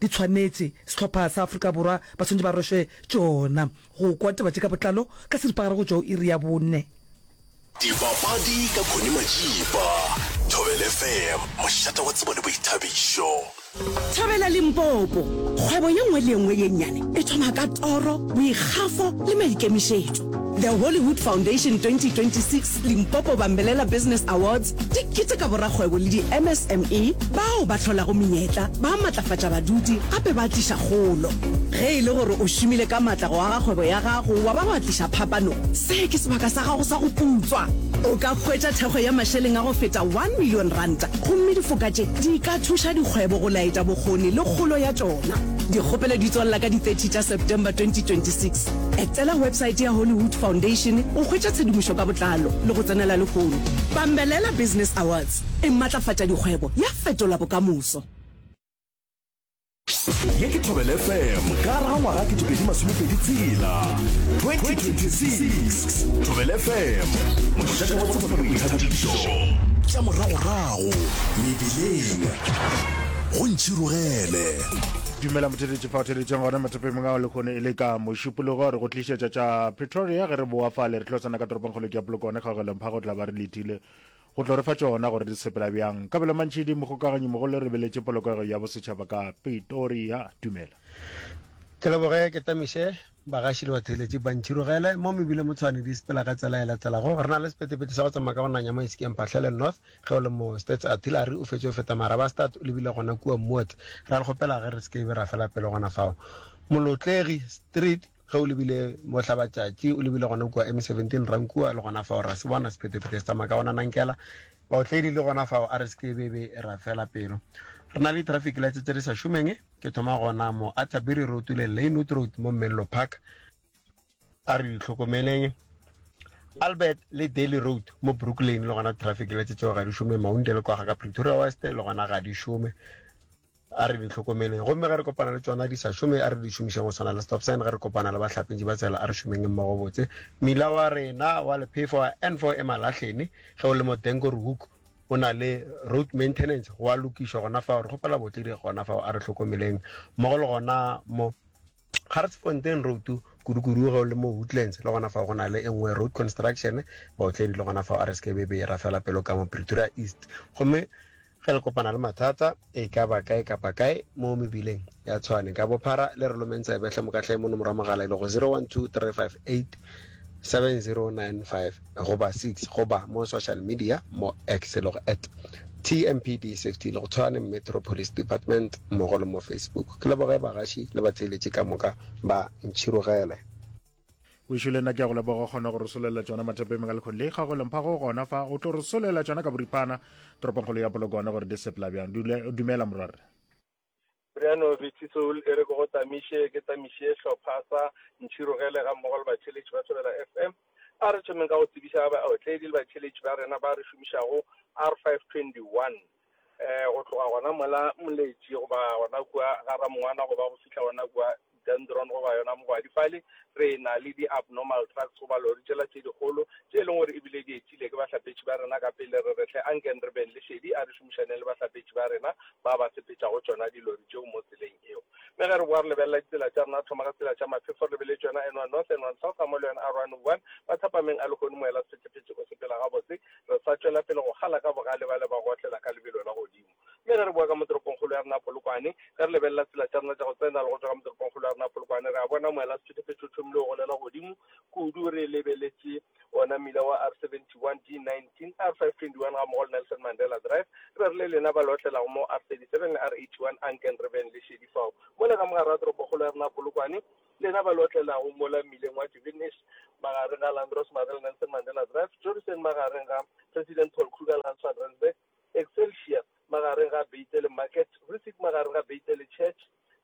Di tshwanetše, sehlopha sa Afrika Borwa ba swanetše ba rwešwe tšona. Go kwa taba tše ka botlalo ka seripagare go tšwa go iri ya bone. Dipapadi ka Connie Majiba, Thobela FM, mošate wa tsebo le boithabišo. Thobela Limpopo, Kgwebo ye nngwe le ye nngwe ye nnyane e thoma ka toro, boikgafo le maikemišetšo. The Hollywood Foundation 2026 Limpopo Bambelela Business Awards di keteka borakgwebo le di-MSME bao ba hlolago menyetla, ba matlafatša baduti gape ba tliša kgolo. Ge e le gore o šomile ka matla go aga kgwebo ya gago wa ba wa tliša phapano, se ke sebaka sa gago sa go putswa. O ka hwetša thekgo ya mašeleng a go feta one million ranta gomme difoka tše di ka thuša dikgwebo go laetša bokgoni le kgolo ya tšona. Dikgopelo di tswalela ka di 30 tša September 2026. Etela websaete ya Hollywood Foundation go hwetša tshedimošo ka botlalo le go tsenela lehono. Bambelela Business Awards e matlafatša dikgwebo, ya fetola bokamoso. Ye ke Thobela FM ka ra ngwaga ke topedi masomepedi tshela 2026 Thobela FM mošate wa tsebo le boithabišo tša moragorago mebileng go ntšhirogele Dumela motheletši. Fa o theleditšeng gona matsepemong ao lehono e le ka mošupologo re go tlišetša tša Pretoria ge re boa fale re tlo tsena ka toropong kgolo ke ya Polokwane kgaogelong phago tla ba re lethile go tlo re fa tšona gore di sepela bjang ka bela mantšhi di mogokaganyi mogolo re beletše polokego ya bosetšhaba ka Pretoria dumela ke leboge ke tamiše bagaši le batheeletši ba ntšhirogele mo mebile motshwane di sepela ka tsela e latelago re na le sepetepete sa go tsamaya ka go nanya mo esekeng phahlele north Ge o le mo States, Artillery o fetše go feta Marabastad, o lebile gona kua Moat. Ra le kgopela ge re se ke be ra fela pelo gona fao Molotlegi Street, ge o lebile Mohlabatšatši, o lebile gona kua M17 Rankua, le gona fao ra se bona sephetephete se tsamaya ka gona Nankela. Baotledi le gona fao, a re se ke be be ra fela pelo. Re na le di-traffic lights tse di sa šomeng. Ke thoma gona mo Atterbury Road le Lynwood Road mo Menlo Park. a re itlhokomeleng albert le daily road mo brooklyn le gona traffic le tsetseo ga di šome maunde le kwaga ka pretoria west le gona ga di šome a re di tlhokomeleng gomme ge re kopana le tsona di sa šome a re di šomišeng go tshwana le stop sign ge re kopana le bahlapetši ba tsela a re šomeng mmogo botse mila wa rena wa lephefo wa n four emalahlene ge o le mo denko rook o na le road maintenance go a lokišwa gona fao re kgopela botledi gona fao a re tlhokomeleng mmogo le gona mo Garsfontein Road kudukudu ge o le mo Woodlands le gona fao go na le e nngwe Road Construction baotledi le gona fao a re se ke be be e rafela pelo ka mo Pretoria East gomme ge le kopana le mathata e ka ba kae kapa kae mo mebileng ya Tshwane ka bophara le re lomeng tsebe hle mo ka hle monomoro wa mogala e lego 012358 7095 goba 6 goba mo social media mo X le go at TMPD Safety le go Tshwane Metro Police Department mmogo le mo Facebook. Ke leboge bagaši le batheeletši ka moka ba ntšhirogele. Wešo le nna ke a go leboga kgona go re solelela tšona mathapeng ka lekgoni le ikgago e leng phago go gona fa o tlo re solelela tšona ka boripana toropongkgolo ya polokwane gore di sepela bjang dumela morwarre Briano Bitisoul e re ke go tamiše ke tamiše hlopha sa Ntšhirogele ga mmogo le batheeletši ba Thobela FM. A re thomeng ka go tsebiša baotledi le batheeletši ba rena ba re šomišago R521 um go tloga gona mola Moletši goba gona kua ga Ramongwana goba go fihla gona kua Dendron goba yona mogwadi. Fale re na le di-abnormal trucks goba lori tšela tše dikgolo tše e leng gore e bile di etile ke bahlapetši ba rena ka pele. Re re hle ankeng re beng le šedi a re šomišaneng le bahlapetši ba rena ba ba sepetšago tšona dilori tšeo mo tseleng eo. Mme ge re bowa re lebelela ditsela tša rena, re thoma ka tsela tša maphefo re lebeletse yona N1 North, N1 South gamogo le yona R101. Mathapameng a lehono moela sephethephethe o sepela gabotse. Re sa tšwela pele go kgala ka bogale bale ba go otlela ka lebelo la godimo. Mme ge re boa ka mo toropongkgolo ya rena Polokwane, ge re lebelela tsela tša rena tša go tsena le go tšwa ka mo toropongkgolo ya rena Polokwane, re a bona moelasethuthufetši o thomile go golela godimo kudu re lebeletše wona mmila wa R71, D19, R521 gammogo le Nelson Mandela Drive, re be re le lena ba le otlelago mo R37 le R81, anken re beng le šedi fao mola ka mogare ga toropokgolo ya rena Polokwane, lena ba le otlelago mola mmileng wa Duvenesh magareng ga Landros Marais le Nelson Mandela Drive, Jodison magareng ga President Paul Kruger le Hans Van Rensburg. Excelsior, magareng ga Beitel Market, Risic, magareng ga Beitel Church,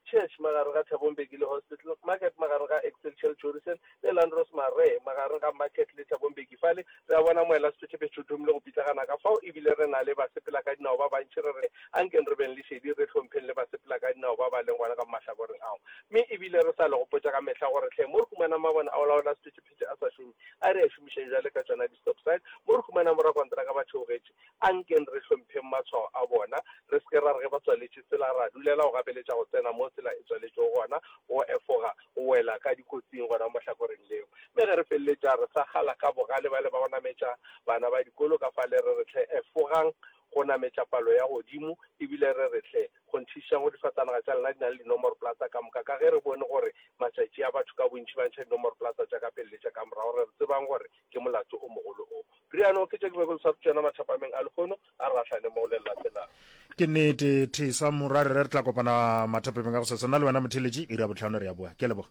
Church, magareng ga Thabongbeki le Hospital, Market, magareng ga Excelsior le Chorisen, le Landros Maree, magareng ga Market le Thabongbeki. Fale re a bona moelasephethephethe o thomile go pitlagana ka fao, e bile re na le basepelakadinao ba bantši. Re re, A nkeng re beng le šedi, re hlompheng le basepelakadinao ba ba leng gona ka mo mahlakoreng ao. Mme e bile re sa le gopotša ka mehla gore, Hle, mo re humanang mabone a go laola sephethephethe. phete a sa šome, a re a šomišeng bjale ka tšona di-stop sign mo re humanang borakonteraka ba theogetše. A nkeng re hlompheng matshwao a bona, re se ke ra re ge ba tswaletše tsela ra dulela go gapeletša go tsena mo tsela e tswaletšego gona go efoga go wela ka dikotsing gona mo hlakoreng leo. Mme ge re feleletša re sa kgala ka bogale bale ba go nametša bana ba dikolo ka fale re re hle, efogang go nametša palo ya godimo ebile re re hle, go ntšhišiša go difatanaga tša lena di na le dinomoroplata ka moka, ka ge re bone gore matšatši a batho ka bontši ba ntšha dinomoroplata tša ka pele le tša ka morago, re tsebang gore ke molato o mogolo o. Riano ke tša dibekolo sa rutšana mathapameng a lehono a re gahlane mo le latelang. Ke nnete, Thisa, morwa, re re tla kopana mathapameng a go sasa. Nna le wena, Motheletši, iri ya bohlano re a boa. Ke a leboga.